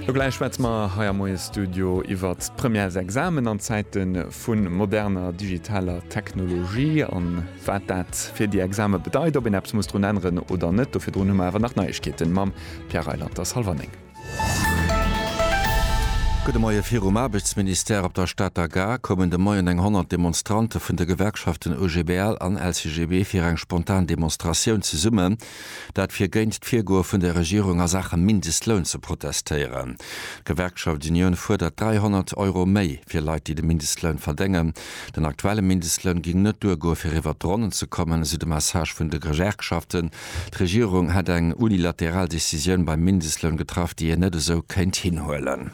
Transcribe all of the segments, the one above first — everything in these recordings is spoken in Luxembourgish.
Lo gläich schwätze mer hei am Moie-Studio iwwer d'Première, s'Examen an Zäite vu moderner digitaler Technologie an wat dat fir déi Exame bedeit, ob een eppes muss drun änneren oder net. Do virdrun hu mer awer nach Neiegkeeten mam Pierre Reyland. Ass hallwer néng. Gudde Moie. Virum Aarbechtsministère op der Stater Gare koumen de Moien eng 100 Demonstrante vun de Gewerkschaften OGBL an LCGB fir eng spontan Demonstratioun zesummen. Dat fir géint d'Virgoe vun der Regierung a Saache Mindestloun ze protestéieren. D'Gewerkschaft Union fuerdert 300 Euro méi fir Leit, déi de Mindestloun verdéngen. Den aktuelle Mindestloun géing net duergoe fir iwwert d'Ronnen ze kommen, esou de Message vun de Gewerkschaften. D'Regierung hätt eng unilateral Decisioun beim Mindestloun getraff, déi een net esou kéint hinhuelen.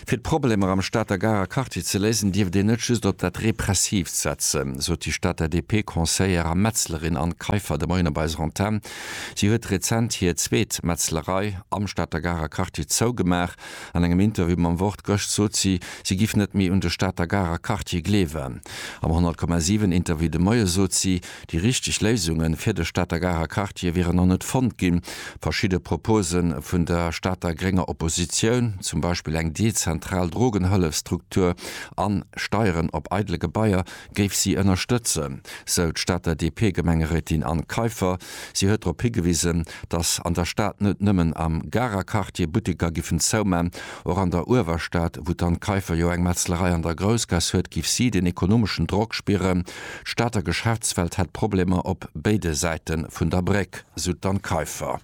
Fir d'Problemer am Stater Garer Quartier ze léisen, dierft een net just op dat Repressiivt setzen, sot déi Stater DP-Conseillère a Metzlerin Anne Kaiffer de Moien op eiser Antenn. Si huet rezent hir zweet Metzlerei am Stater Garer Quartier zougemaach. An engem Interview mam Wort gëscht sot si, si giff net méi un de Stater Garer Quartier gleewen. Am 100,7 Interview de Moie sot si, Déi richteg Léisunge fir de Stater Garer Quartier wieren nach net fonnt ginn. Verschidde Propose vun der Stater grénger Oppositioun, zum Beispill eng dezentral Drogenhëllefsstruktur an Steieren op eidele Gebaier, géif si ënnerstëtzen, sou d'Stater DP-Gemengerétin Anne Kaiffer. Si huet drop higewisen, datt an der Stad net nëmmen am Garer Quartier Butteker giffen zouman. Och an der Uewerstad, wou d'Anne Kaiffer jo eng Metzlerei an der Groussgaass huet, géif si den ekonomeschen Drock spieren. D'Stater Geschäftswelt hätt Problemer op béide Säite vun der Bréck, sou d'Anne Kaiffer.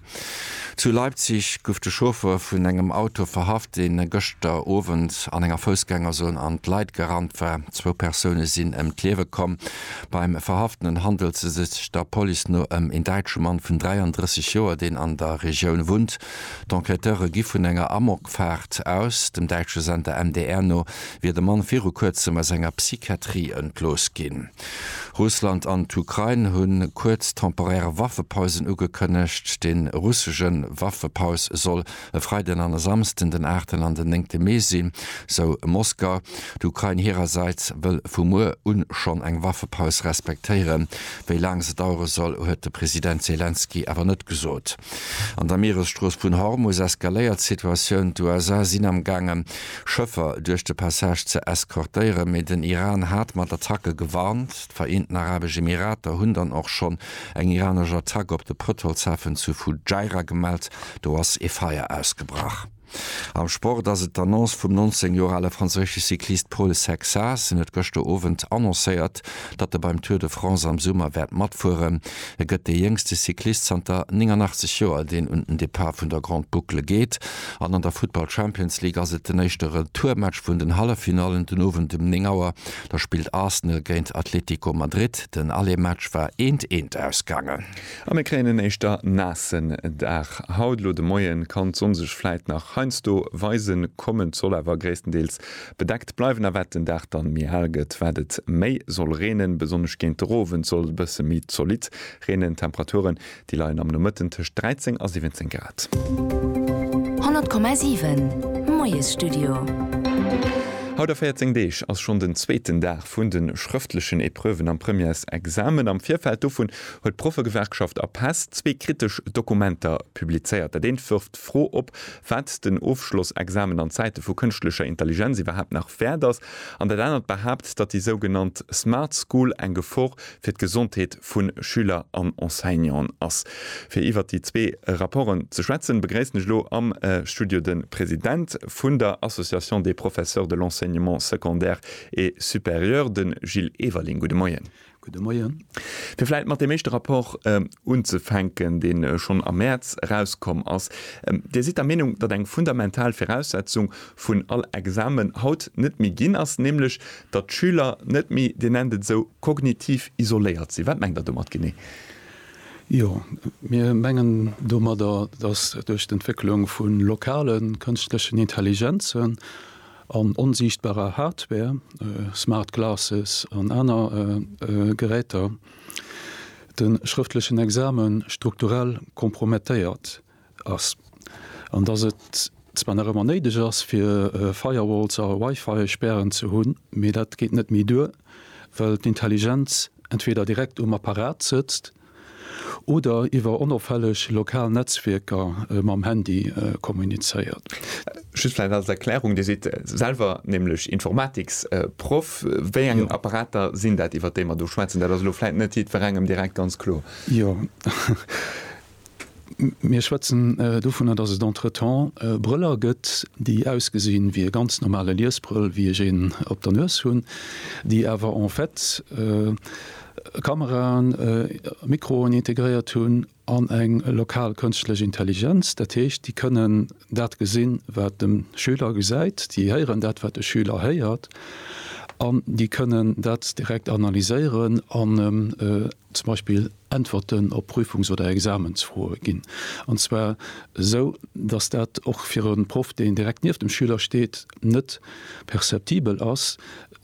Zu Leipzig gouf de Chauffer vun engem Auto verhaft, dee gëschter Owend an enger Foussgängerzon an d'Leit gerannt war. Zwou Persoune sinn ëm d'Liewe komm. Beim Verhaftenen handelt se sech der Police no ëm een däitsche Mann vun 33 Joer, deen an der Regioun wunnt. D'Enquêteure gi vun enger Amokfaart aus. Dem däitsche Sender MDR no wier de Mann viru kuerzem aus enger Psychiatrie entlooss ginn. Russland an d'Ukrain hunn kuerz temporär Waffepausen ugekënnegt. De russesche Waffepaus soll e Freiden an e Samsden, den aachten an den néngte Mee sinn, sou Moskau. D'Ukrain hirersäits wëll vu muer u schonn eng Waffepaus respektéieren. Wéi laang se dauere soll, huet de President Selenskyj awer net gesot. An der Mieresstrooss vun Hormus eskaléiert d'Situatioun. D'USA sinn am gaangen, Schëffer duerch de Passage ze eskortéieren, mee den Iran hat mat Attacke gewarnt. D'Vereenten Arabesch Emirater hunn dann och schonn eng iranesch Attack op de Pëtrolshafen zu Fujairah gemellt. Do ass ee Feier ausgebrach. Am Sport ass et d'Annonce vum 19 Joer ale franséische Cyclist Paul Sexas. En huet gëschter Owend annoncéiert, datt e beim Tour de France am Summer wäert matfueren. E gëtt dee jéngste Cyclist zanter 89 Joer, deen un den Depart vun der Grande Boucle geet. An an der Futtball Champions League ass et den éischte Retourmatch vun den Halleffinallen den Owend um 9 Auer. Da spillt Arsenal géint Atletico Madrid. Den Aller-Match war eent eent ausgaangen. A mir kréien en éischter naassen Dag haut. Elo de Moien kann d'Sonn sech vläit nach heiansdo weisen kommen, soll awer gréisstendeels bedeckt bleiwen. A wat den Dag dann méi hell gëtt, wat et méi soll reenen. Besonnesch géint der Owend soll et e bësse méi zolidd reenen. D'Temperature Déi leien am Nomëtten tëscht 13 a 17 Grad. 100,7 Moiesstudio. Haut a 14 Deeg ass schonn den zweeten Dag vun de schrëftlechen Epreuven am Premièresexamen. Am Virfeld dovun huet d'Proffegewerkschaft Apess zwee kritesch Dokumenter publizéiert. Dat eent wërft d'Fro op, wat den Ofschlossexamen an Zäite vu kënschtlecher Intelligenz iwwerhaapt nach wäert ass. An dat anert behaapt, datt déi sougenannt Smart School eng Gefor fir d'Gesondheet vu Schüler an Enseignanten ass. Fir iwwert déi zwee Rapporten ze schwätzen, begréissen ech elo am Studio de President vun der Association des professeurs de l'enseignement secondaire et supérieur, de Gilles Everling. Gudde Moien. Gudde Moien. Fir vläicht mat deem éischte Rapport unzefänken, dee schonn am Mäerz erauskomm ass. Dir sidd der Meenung, datt eng fundamental Viraussetzung vun all Examen haut net méi ginn ass, nämlech Datt d'Schüler net méi, Dir nennt et esou, kognitiv isoléiert sinn. Wat mengt Der domat genee? Jo, mir mengen domadder, datt duerch d'Entwécklung vu lokale kënschtlechen Intelligenzen an onsiichtbarer Hardware, smart glasses an aner Geräter, de schrëftlechen Exame strukturell kompromettéiert ass an dass et zwar nach ëmmer néideg ass fir Firewalls a Wi-Fi-Spären ze hunn, mee dat geet net méi duer, well d'Intelligenz entweder direkt um Apparat sëtzt oder iwwer onofhällg lokal Netzwierker mam Handy kommunizéiert. Just vläicht als Erklärung, Dir sidd selwer nämlech Informatiksproff. Wéi eng Apparater sinn dat, iwwer déi mer do schwätzen? Dat ass elo vläicht net jiddwerengem direkt ganz kloer. Jo. Mir schwätzen dovunner, dass et entretemps Brëller gëtt, déi ausgesinn, wéi e ganz normale Liesbrëll, wéi ech een op der Nues hunn, déi awer en fait Kameraen, Mikroen integréiert hunn an eng lokal kënschtlech Intelligenz. Dat heescht, déi kënnen dat gesinn, wat de Schüler gesäit, déi héieren dat, wat de Schüler héiert, an déi kënnen dat direkt analyséieren an zum Beispill Äntwerten op Prüfungs oder Examensfroe ginn, an zwar esou, datt dat och fir e Proff, deen direkt nieft dem Schüler steet, net perceptibel ass,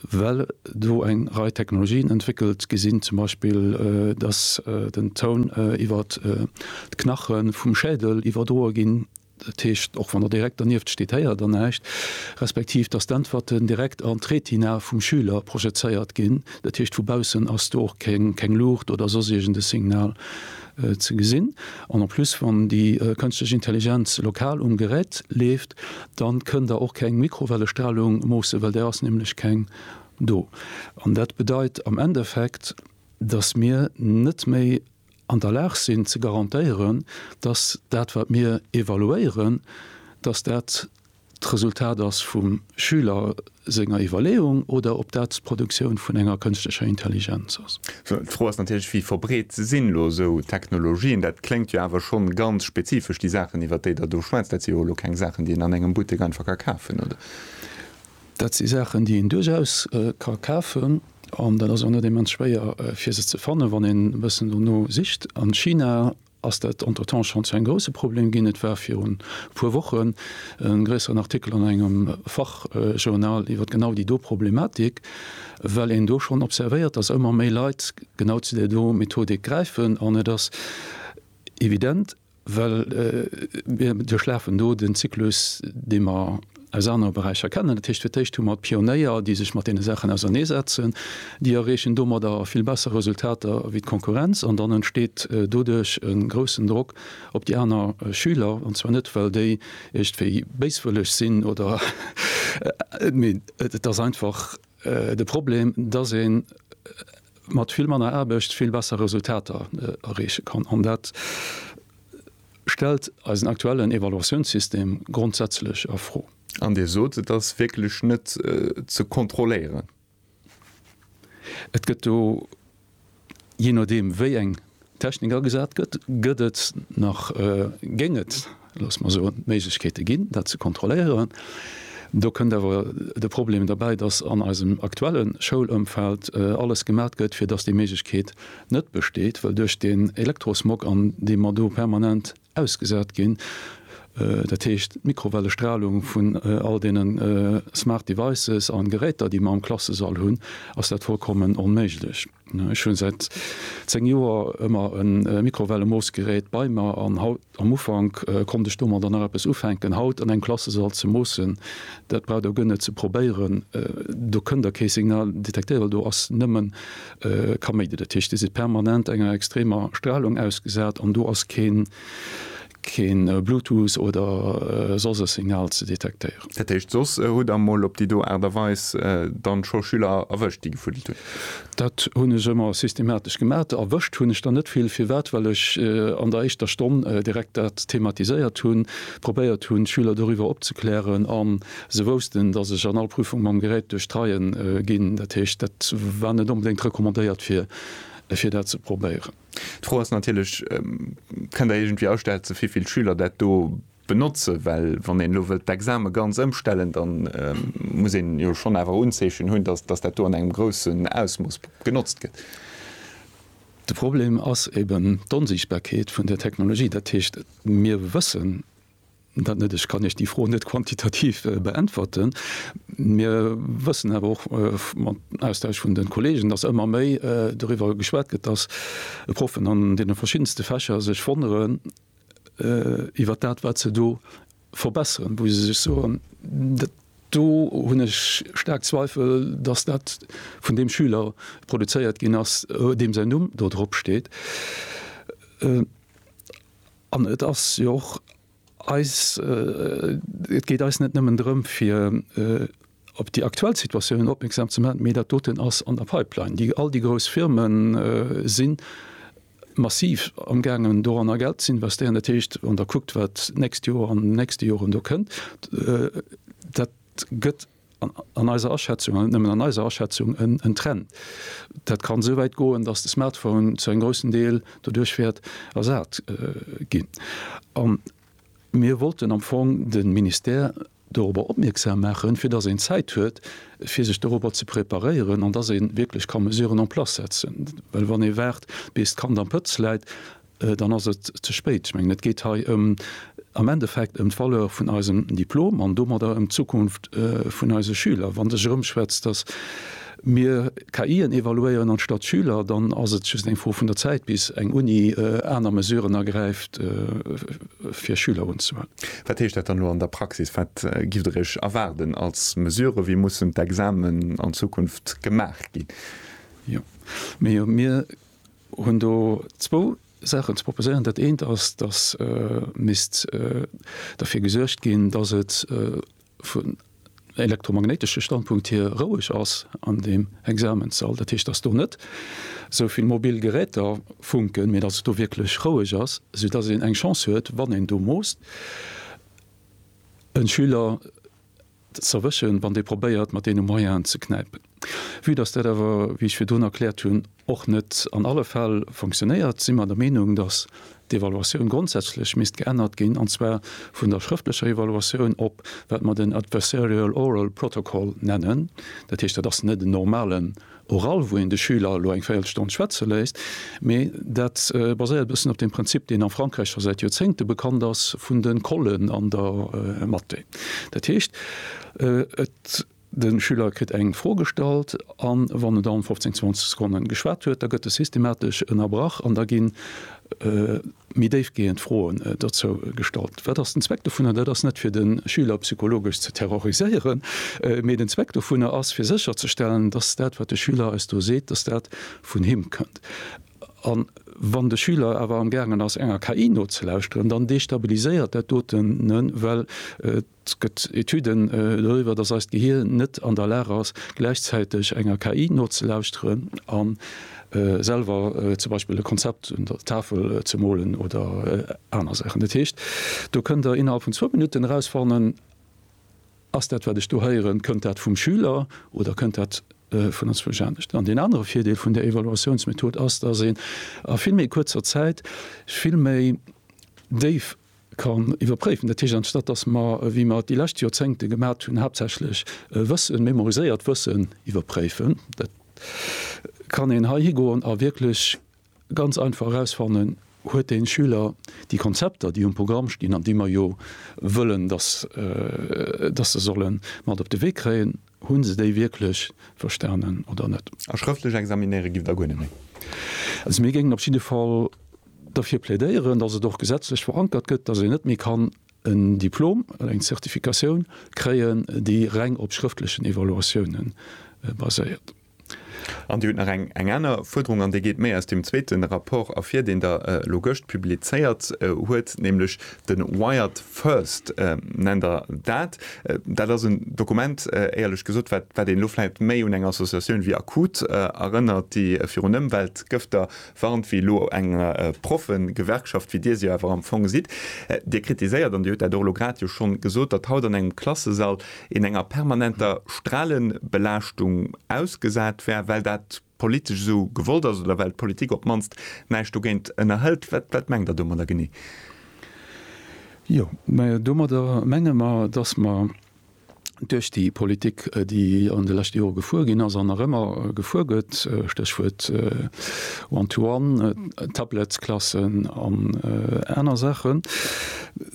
well do eng Rei Technologien entwéckelt gi sinn, zum Beispill datt den Toun iwwert d'Knache vum Schädel iwwerdroe ginn Dat heescht, och wann Der direkt dernieft steet, héiert Der näischt, respektiv dass d'Äntwerten direkt an d'Retina vum Schüler projezéiert ginn. Dat heescht, vu baussen ass do och keng Luucht oder soss iergend e Signal ze gesinn. An en plus, wann déi kënschtlech Intelligenz lokal um Gerät leeft, da kënn Der och keng Mikrowellestralung moossen, well där ass nämlech keng do. An dat bedeit am Endeffekt, dass mir net méi. an der Lag sinn ze garantéieren, dass dat wat mir evaluéieren, dass dat d'Resultat ass vum Schüler senger Iwwerleeung oder ob dat d'Produktioun vun enger kënschtlecher Intelligenz ass. Sou, d'Fro ass natierlech, wéi verbreet sinn elo esou Technologien? Dat kléngt jo awer schonn ganz spezifesch, déi Saachen iwwert déi Der do schwätzt. Dat si jo elo keng Saachen, déi een an engem Buttek einfach ka kafen, oder? Dat si Saachen, déi een duerchaus ka kafen, an dat ass och net immens schwéier, fir se ze fannen, wann een e bëssen dono sicht. A China ass dat entretemps schonn zu engem grousse Problem ginn. Et war virun e puer Wochen e gréisseren Artikel an engem Fachjournal iwwer genau déi do Problematik, well een do schonn observéiert, datt ëmmer méi Leit genau zu där do Methodik gräifen. An et ass evident, Well mir duerchlafen do den Zyklus, dee mer aus anere Beräicher kennen. Dat heescht, fir d'éischt hu mer d'Pionéier, déi sech mat deene Saachen auserneesetzen. Déi erreechen domadder vill besser Resultater wéi d'Konkurrenz. An dann entsteet doduerch e groussen Drock op déi aner Schüler. An zwar net, well déi iergendwéi béiswëlleg sinn oder, mee et ass einfach, de Problem, dass ee mat vill manner Aarbecht vill besser Resultater erreeche kann. An dat stellt eisen aktuellen Evaluatiounssystem grondsätzlech a Fro. An Dir sot, et ass wierklech net ze kontrolléieren. Et gëtt do Jee nodeem wéi eng Technik agesat gëtt, gëtt et nach, géing et, loosse mer soen, Méiglechkeete ginn, dat ze kontrolléieren. Do kënnt awer de Problem derbäi, datt an eisem aktuelle Schoulëmfeld alles gemat gëtt, fir datt déi Méiglechkeet net besteet, well duerch den Elektrosmog, an dee mer do permanent ausgesat ginn, dat heescht d'Mikrowellestralung vun all deene smart devices a Geräter, déi mer am Klassesall hunn, ass dat vollkommen onméiglech. Ech hu säit zéng Joer ëmmer e Mikrowellemoossgerät bei mer an haut, am Ufank konnt ech domadder nach eppes ufänken, haut an engem Klassesall ze moossen, dat braucht Der guer net ze probéieren, do kënnt Der kee Signal detektéieren, do ass nëmmen Kaméidi, dat heescht, déi si permanent enger extremer Stralung ausgesat an do ass keen keen Bluetooth oder soss e Signal ze detektéieren. Dat heescht, soss hutt Der mol op déi do Aart a Weis dann scho Schüler erwëscht, déi gefuddelt hunn? Dat hunn ech ëmmer systematesch gemat. Erwëscht hunn ech der net vill. Firwat? Well ech an der éischter Stonn direkt dat thematiséiert hunn, probéiert hunn d'Schüler doriwwer opzeklären an Se woussten, dass ech an all Prüfung mam Gerät duerch d'Reie ginn. Dat heescht, dat war net onbedéngt recommandéiert, fir dat ze probéieren. D'Fro ass natierlech, Kënnt Der iergendwéi ausschätzen, wéi vill Schüler dat do benotzen? Well wann een elo wëllt d'Exame ganz ëmstellen, da muss een jo schonn awer Unzeechen hunn, dass dat do an engem groussen Ausmooss genotzt gëtt. De Problem ass eben d'Onsiichtbarkeet vun där Technologie. Dat heescht, mir wëssen. Dat net. Ech kann Iech déi Fro net quantitativ beäntwerten. Mir wëssen awer och mam Austausch vun de Kolleegen, datt ëmmer méi doriwwer geschwat gëtt, datt Proffen an deene verschiddenste Fächer sech wonneren iwwer dat, wat se do verbesseren, wou se sech soen, dat do hunn ech staark Zweifel, datt dat vun deem Schüler produzéiert ginn ass, deem säin Numm do dropsteet. An et ass jo och eis, et geet eis net nëmmen drëm, fir op déi aktuell Situatiounen opmierksam ze maachen, mee dat doten ass an der Pipeline. Déi all déi grouss Firme si massiv amgaangen, doranner Geld ze investéieren. Dat heescht, wann Der kuckt, wat d'nächst Joer an an den nächste Joren do kënnt, dat gëtt, an eiser Aschätzung, an net nëmmen an eiser Aschätzung, en Trend. Dat kann esou wäit goen, datt de Smartphone zu engem groussen Deel doduerch wäert ersat ginn. A mir wollten am Fong de Ministère dorobber opmierksam maachen, fir datt een Zäit huet, fir sech dorobber ze preparéieren an datt ee wierklech ka Mesuren en place setzen. Well wann ee waart, bis d'Kand am Pëtz läit, dann ass et ze spéit. Ech mengen, et geet hei am Endeffekt ëm d'Valeur vun eisem Diplom an domadder ëm d'Zukunft vun eise Schüler. Wann sech erëmschwätzt, datt mir KIen evaluéieren anstatt Schüler, dann ass et just eng Fro vun der Zäit, bis eng Uni aner Mesuren ergräift, fir Schüler unzehuelen. Wat heescht dat dann elo an der Praxis? Wat giff Der Iech erwaarden als Mesurë? Wéi mussen d'Examen an Zukunft gemaach ginn? Jo, mir hunn do zwou Saachen ze proposéieren. Dat eent ass, dass misst derfir gesuergt ginn, dass et vun elektromagnéitesche Standpunkt hier roueg ass an deem Examenssall. Dat heescht, dass do net esou vill mobil Geräter funken, mee dass et do wierklech roueg ass, soudatt een eng Chance huet, wann een do moosst e Schüler, z'erwëschen, wann dee probéiert mat deene Moyenen ze knäipen. Vue datt dat awer, wéi ech virdrun erkläert hunn, och net an alle Fäll fonctionnéiert, si mer der Meenung, datt d'Evaluatioun grondsätzlech misst geännert ginn, an zwar vun der schrëftlecher Evaluatioun op wat mer den adversarial oral protocol nennen. Dat heescht, dat ass net en normalen oral, wou een de Schüler elo eng Véierelstonn schwätze léisst, mee dat baséiert e bëssen op deem Prinzip, deen a Frankräich scho säit Joerzéngte bekannt ass, vun de Collen an der Mathé. Dat heescht, et de Schüler kritt eng Fro gestallt an wann en dann 15, 20 Sekonne geschwat huet, da gëtt e systematesch ënnerbrach an da ginn. méi déifgehend Froen dozou gestallt, Wat ass den Zweck dovunner? Dat ass net fir de Schüler psychologesch ze terroriséieren, mee den Zweck dovunner ass fir sécherzestellen, dass dat wat de Schüler eis do seet, dass dat vun him kënnt. A wann de Schüler awer amgaangen ass enger KI nozelauschteren, dann destabiliséiert dat doten, well Et gëtt Etüden doriwwer, dass eist Gehier net an der Lag ass, gläichzäiteg enger KI nozelauschteren a selwer zum Beispill e Konzept un der Tafel ze molen oder aner Saachen. Dat heescht, do kënnt Der innerhalb vun zwou Minutten erausfannen, Ass dat, wat ech do héieren, kënnt dat vum Schüler oder kënnt dat vun anzwousch anescht? An deen anere Virdeel vun där Evaluatiounsmethod ass, dass een a vill méi kuerzer Zäit vill méi déif, kann iwwerpréifen. Dat heescht, anstatt datt mer, wéi mer et déi lescht Joerzéngte gemat hunn, haaptsächlech Wëssen, memoriséiert Wëssen iwwerpréifen, dat kann een hei higoen a wierklech ganz einfach erausfannen, Huet de Schüler déi Konzepter, déi um Programm stinn an déi mer jo wëllen, datt se se solle mat op de Wee kréien, Hunn se déi wierklech verstanen oder net? A schrëftlech examinéiere giff der guer net méi. Also mir géingen op jidde Fall derfir plädéieren, dass et och gesetzlech verankert gëtt, dass een net méi kann en Diplom oder eng Zertifikatioun kréien, déi reng op schrëftlechen Evaluatiounen baséiert. An Dir hutt nach eng aner Fuerderung, an déi geet méi aus deem zweete Rapport ervir, deen Der elo gëscht publizéiert huet, nämlech de Wired First nennt Der dat. Dat ass en Dokument, éierlech gesot, wat een elo vläicht méi un eng Associatioun wéi Akut erënnert, déi virun Ëmweltgëfter Warnt wéi elo eng Proffegewerkschaft, wéi Dir se jo awer am Fong sidd. Dir kritiséiert, an Dir hutt dat och elo grad jo schonn gesot, datt haut an engem Klassesall een enger permanenter Stralebelaaschtung ausgesat wär, well dat politesch esou gewollt ass oder well d'Politik op d'mannst näischt dogéint ënnerhëlt. Wat mengt Der domadder genee? Jo, mä domadder menge mer, datt mer duerch déi Politik, déi an de leschte Jore gefuer ginn ass an nach ëmmer gefuer gëtt, Stéchwuert One-to-one, Tablettsklassen an aner Saachen,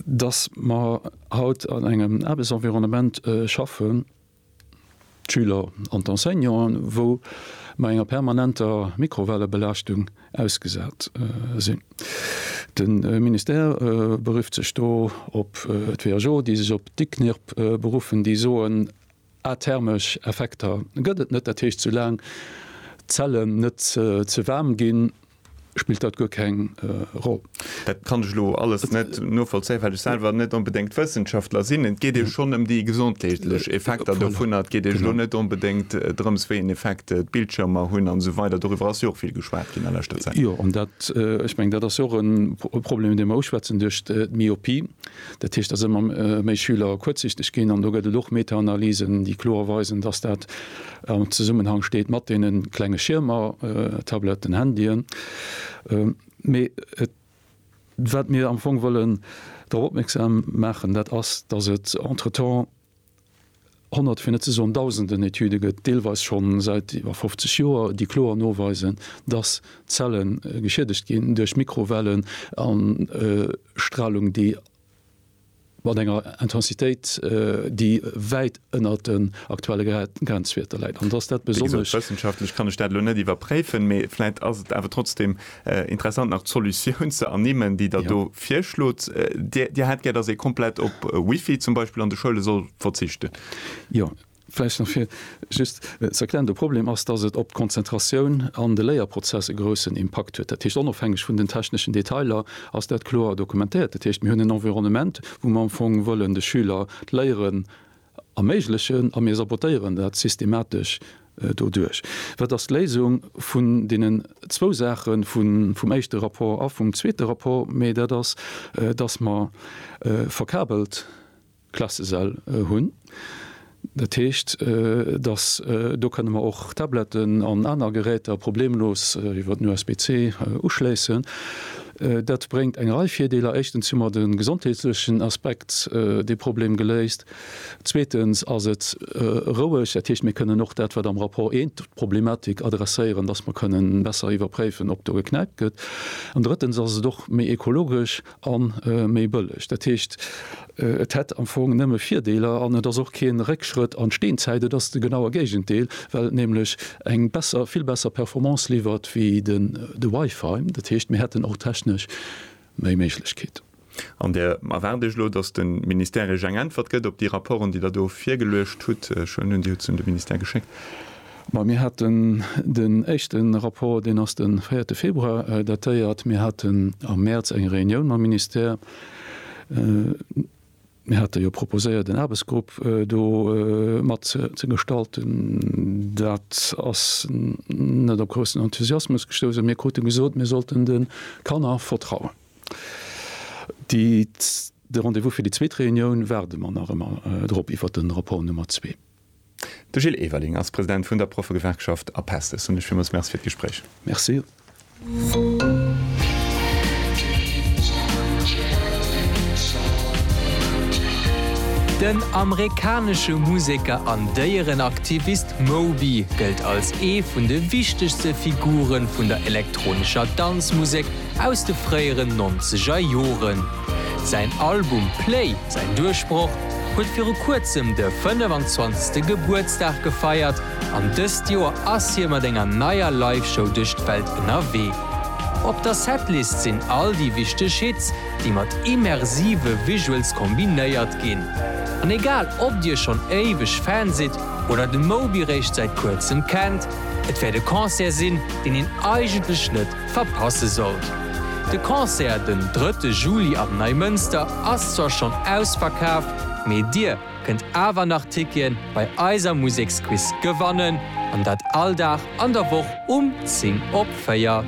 dass mer haut an engem Aarbechtsenvironnement schaffen, d'Schüler an d'Enseignanten, wou mer enger permanenter Mikrowellebelaaschtung ausgesat sinn. De Ministère berifft sech do op d'WHO, déi sech op d'ICNIRP beruffen, déi soen, athermesch Effekter gëtt et net, dat heescht, soulaang d'Zellen net ze waarm ginn, spillt dat guer keng Roll. Dat kann ech elo alles net novollzéien, well ech selwer net onbedéngt Wëssenschaftler sinn. Et geet jo schonn ëm déi gesondheetlech Effekter dovunner. Et geet elo net onbedéngt drëms, wéi een Effekt d'Bildschiermer hunn an esou weider. Doriwwer ass jo och vill geschwat ginn a leschter Zäit. Jo, an dat, ech mengen, dat ass jo och e Problem, dee mer uschwätzen duerch d'Myopie. Dat heescht, dass ëmmer méi Schüler kuerzsichteg ginn. An do gëtt et och Metaanalysen, déi kloer weisen, dass dat am Zesummenhang steet mat deene klenge Schiermer, Tabletten, Handyen. Mee wat mir am Fong wëllen drop opmierksam maachen, dat ass, dass et entretemps Honnert, fir net ze soen Dausenden Etüde gëtt, deelweis scho säit iwwer 50 Joer, déi kloer noweisen, dass Zelle geschiedegt ginn duerch Mikrowellen a Stralung, déi mat enger Intensitéit, déi wäit ënnert den aktuelle Grenzwierter läit. Wéi gesot, wëssenschaftlech kann ech dat elo net iwwerpréifen, mee vläit ass et awer trotzdem Interessant nach d'Solutioun ze ernimmen, déi Der do virschlot. Dir hätt gär, datt ee komplett op Wifi zum Beispill an de Schoule soll verzichten? Jo, vläicht nach fir just ze erklären, De Problem ass, datt et op d'Konzentratioun an de Léierprozess e groussen Impakt huet. Dat heescht, onofhängeg vun den techneschen Detailer ass dat kloer dokumentéiert. Dat heescht, mir hunn en Environnement, wou mer am Fong wëllen de Schüler d'Léieren Erméiglechen a mir sabotéieren dat systematesch doduerch. Wat ass d'Léisung vun deenen zwou Saache vum éischte Rapport a vum zweete Rapport? Mee dat ass, dass mer verkabelt Klassesäll hunn. Dat heescht, dass, do kënne mer och Tabletten an aner Geräter problemlos iwwer den USB-C uschléissen. Dat bréngt eng Rei Virdeeler, éischtens hu mer de gesondheetlechen Aspekt, dee Problem geléist, zweetens ass et roueg, dat heescht mir kënnen och dat wat am Rapport I, d'Problematik adresséieren, datt mer kënnen besser iwwerpréifen, ob do geknäipt gëtt, an drëttens ass et och méi ekologesch a méi bëlleg. Dat heescht. Et hätt am Fong nëmme Virdeeler an et ass och kee Réckschrëtt an d'Steenzäit. Et ass de genaue Géigendeel, well et nämlech eng besser, vill besser Performance liwwert wéi de Wi-Fi. Dat heescht, mir hätten och technesch méi Méiglechkeeten. An där erwaart ech elo, datt de Ministère Iech eng Äntwert gëtt op déi Rapporten, déi Der do virgeluecht hutt. Ech huelen un, Dir hutt se un de Ministère geschéckt. Ma mir haten den éischte Rapport, deen ass de véierte Februar datéiert. Mir haten am Mäerz eng Reunioun mam Ministère. Mir hate jo proposéiert en Aarbechtsgrupp do mat ze gestalten. Dat ass net op groussen Enthusiasmus gestouss a mir krute gesot, mir sollten de Kanner vertrauen. De Rendez-vous fir déi zweet Reunioun waarde mer nach ëmmer drop iwwert de Rapport Nummer zwee. De Gilles Everling ass President vun der Proffegewerkschaft Apest. Ech soen lech villmools Merci fir d'Gespréich. Merci. Den amerikanesche Museker an Déierenaktivist Moby gëllt als ee vun de wichtegste Figure vun der elektronescher Danzmusek aus de fréieren nonzeger Joren. Säin Album Play, säin Duerchbroch, huet viru kuerzem de 25. Gebuertsdag gefeiert an dëst Joer ass hie mat enger neier Live-Show duerch d'Welt ënnerwee. Op der Setlist sinn all déi wichteg Hits, déi mat immersive Visuals kombinéiert ginn. An egal ob dir schonn éiweg Fan sidd oder de Moby réischt säit kuerzem kennt, et wäert e Concert sinn, deen een eigentlech net verpasse sollt. De Concert den drëtte Juli am Neimënster ass zwar schonn ausverkaaft, mee dir kënnt awer nach Ticketen bei eiser Museksquiz gewannen, an dat all Dag an der Woch um 10 op 4.